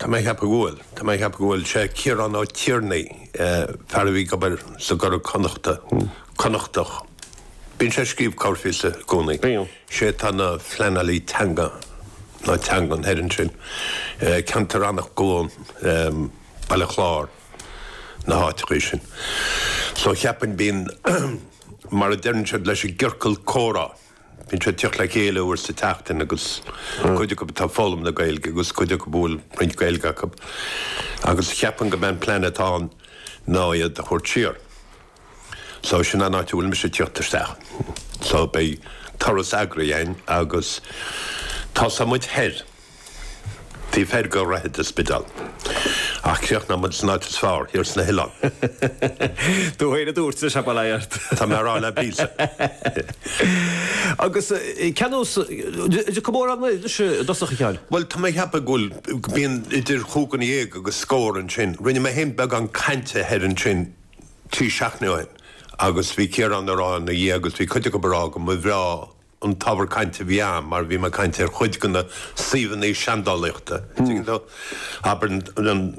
Tá mé a cheapadh go bhfuil. Tá mé a cheapadh go bhfuil. Sé Ciarán Ó Tiarnaigh, fear a bhí ag obair sa gCuradh Connachta, Connachtach. Bíonn sé ag scríobh corrphíosa i gcónaí. Bíonn. Sé atá ina phleanálaí teanga, nó teangan, thoir ansin. Ceantar Eanach Dhúin, Baile Chláir, na háiteachaí sin. So cheapfainn bíonn, mar a deireann siad leis an gciorcal comhrá. Bíonn siad ag tíocht le chéile uair sa tseachtain agus cuid acu atá ag foghlaim na Gaeilge agus cuid acu a bhfuil roinnt Gaeilge acu agus cheapfainn gurb é an plean atá ann ná iad a thabhairt siar. So sin an áit a bhfuil mise ag tíocht isteach. So beidh turas eagraithe againn agus tosóidh muid thoir. B'fhéidir gairid don Spidéal. Ach críochnóidh muid san áit is fearr, thiar sna hoileáin. Do thoil a dúirt, a Shabhalai Art. Tá mé a rá le Peter. Agus ceannós, de comóradh na hirise i dtosach a shaoil. Bhuel, tá mé a cheapadh go bhfuil, go mbíonn idir chúig dhuine dhéag agus scór ansin. Rinne mé féin beagán cainte thoir ansin trí seachtaine ó shin agus bhí Ciarán a rá ina dhiaidh agus bhí cuid acu a rá go mba bhreá an t-ábhar cainte a bhí ann mar bhí mé ag caint ar chuid de na suíomhanna seandálaíochta, tuigeann tú. Abair,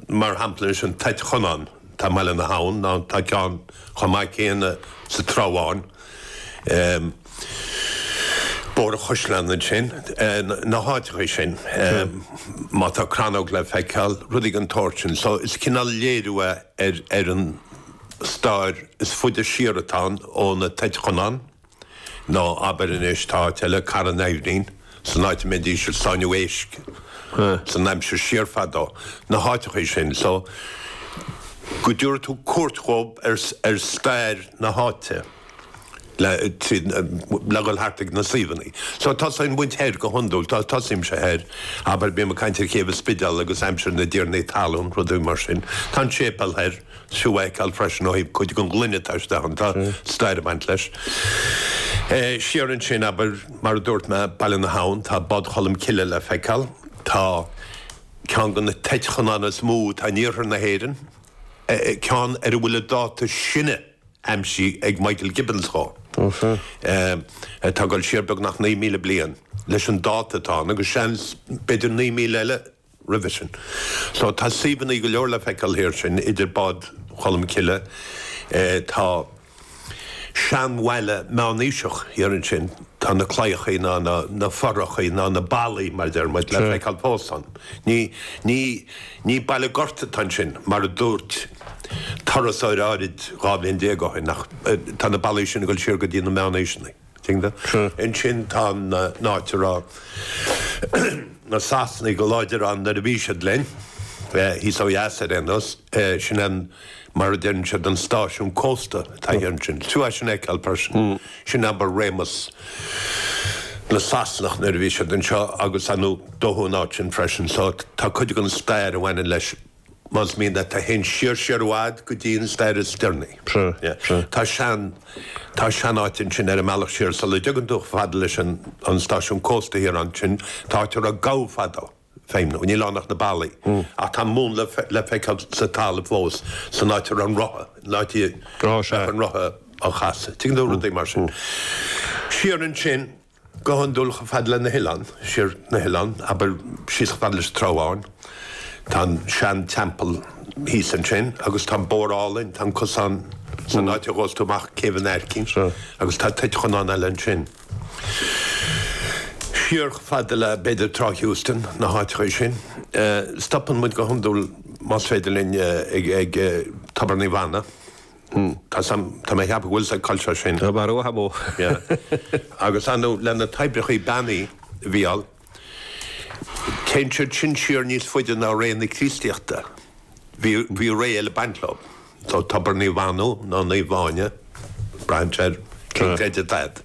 mar shampla anois, an Toit Chonáin, atá i mBaile na hAbhann, nó tá ceann chomh maith céanna sa Trá Bháin, Bóthar an Chaisleáin ansin, na háiteacha sin, má tá crannóg le feiceáil, rudaí den tsórt sin. So is cineál léiriú é ar an stair is faide siar atá ann ó na Toit Chonáin. Nó abair anois, tá áit eile, Cara an Aibhnín, san áit a mbeidís ag sáinniú éisc san aimsir siar fadó. Na háiteachaí sin so go dtiúrfaidh tú cuairt dhób ar stair na háite le, tríd, le dhul thart ag na suíomhannaí. So tosaíonn muid thoir, go hiondúil, to, tosaímse thoir, abair, bím ag caint ar Chéibh an Spidéil agus aimsir na dtiarnaí talún, rudaí mar sin. Tá an séipéal thoir. Seo le feiceáil freisin ó thaobh cuid den ghloine atá istigh ann. Tá stair ag baint leis. Siar ansin, abair, mar a dúirt mé, Baile na hAbhann, tá Bád Cholm Cille le feiceáil. Tá ceann de na Toit Chonáin is mó atá in iarthar na hÉireann, ceann ar a bhfuil an dáta is sine aimsithe ag Michael Gibbons dhó, atá ag dul siar beagnach 9,000 bliain leis an dáta atá ann, agus seans, b'fhéidir 9,000 eile. roimhe sin. So tá suíomhannaí go leor le feiceáil thoir sin, idir Bád Cholm Cille, tá seanbhaile meánaoiseach thiar ansin, tá na claíochaí nó na fothrachaí nó na ballaí mar a deir muid, le feiceáil fós ann. Ní ní baile gorta atá ansin mar a dúirt turasóir áirid dhá bhliain déag ó shin ach tá na ballaí sin ag dul siar go dtí na meánaoiseannaí. Ansin tá an áit a raibh na Sasanaigh go láidir ann nuair a bhí siad linn, thíos ó dheas ar aon nós, sin an, mar a deireann siad, an stáisiún cósta atá thiar ansin. Tú as sin a fheiceáil freisin. Sin abair réimeas na Sasanach nuair a bhí siad anseo agus dódh an áit sin freisin. So tá cuid den stair a bhaineann leis Más mian leat a théann siar i bhfad go dtí an stair is deireanaí, tá sean tá sean áit ansin ar an mbealach siar sula dteagann tú chomh fada leis an an stáisiún cósta thiar ansin. Tá áit a raibh gabha fadó, ag feidhmiú, níl ann ach na ballaí ach tá múnla le feiceáil sa talamh fós san áit a raibh an rotha, an áit a bhí an rotha á chasadh. Tuigeann tú, rudaí mar sin. Siar ansin. Go hiondúil chomh fada le na hoileáin, siar na hoileáin, abair síos chomh fada leis an Trá Bháin. Tá an sean teampall thíos ansin agus tá an bóthar álainn, tá an cosán san áit a ghabhas tú amach Céibh an Aircín agus tá toit Chonáin eile ansin. Siar chomh fada le b'fhéidir Trá Heuston, na háiteachaí sin. Stopann muid go hiondúil más féidir linn ag Tobar Naomh Anna. Tá, tá mé ag ceapadh go bhfuil sa gcultúr sin. Tá mé ró-tha mó. Yeah. Agus tá nó le na toibreachaí beannaithe, bhuel, téann siad sin siar níos faide ná ré na Críostaíochta. Bhí, bhí ré eile ag baint leo. So Tobar Naomh Anna, nó Naomh Áine, braitheann sé ar cén creideamh atá agat?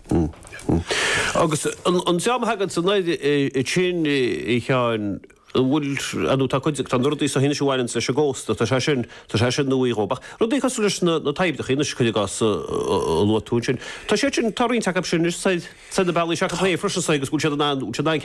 Agus an, an dream a thagann san aird, eh, sin, eh, Sheáin, bhfuil, nó tá cuid, tá na rudaí seo anois a bhaineanns leis an gcósta, tá sé sin, tá sé sin nuaí dhóib. Ach rudaí cosúil leis na, na toibreachaí anois, cuir i gcás, a, a luaigh tú ansin, tá siad sin, tá roinnt acu sin anois, is dóigh, sna bealaí seo acu féin freisin, is dóigh, agus bhfuil siad in ann, bhfuil siad in ann ceangal,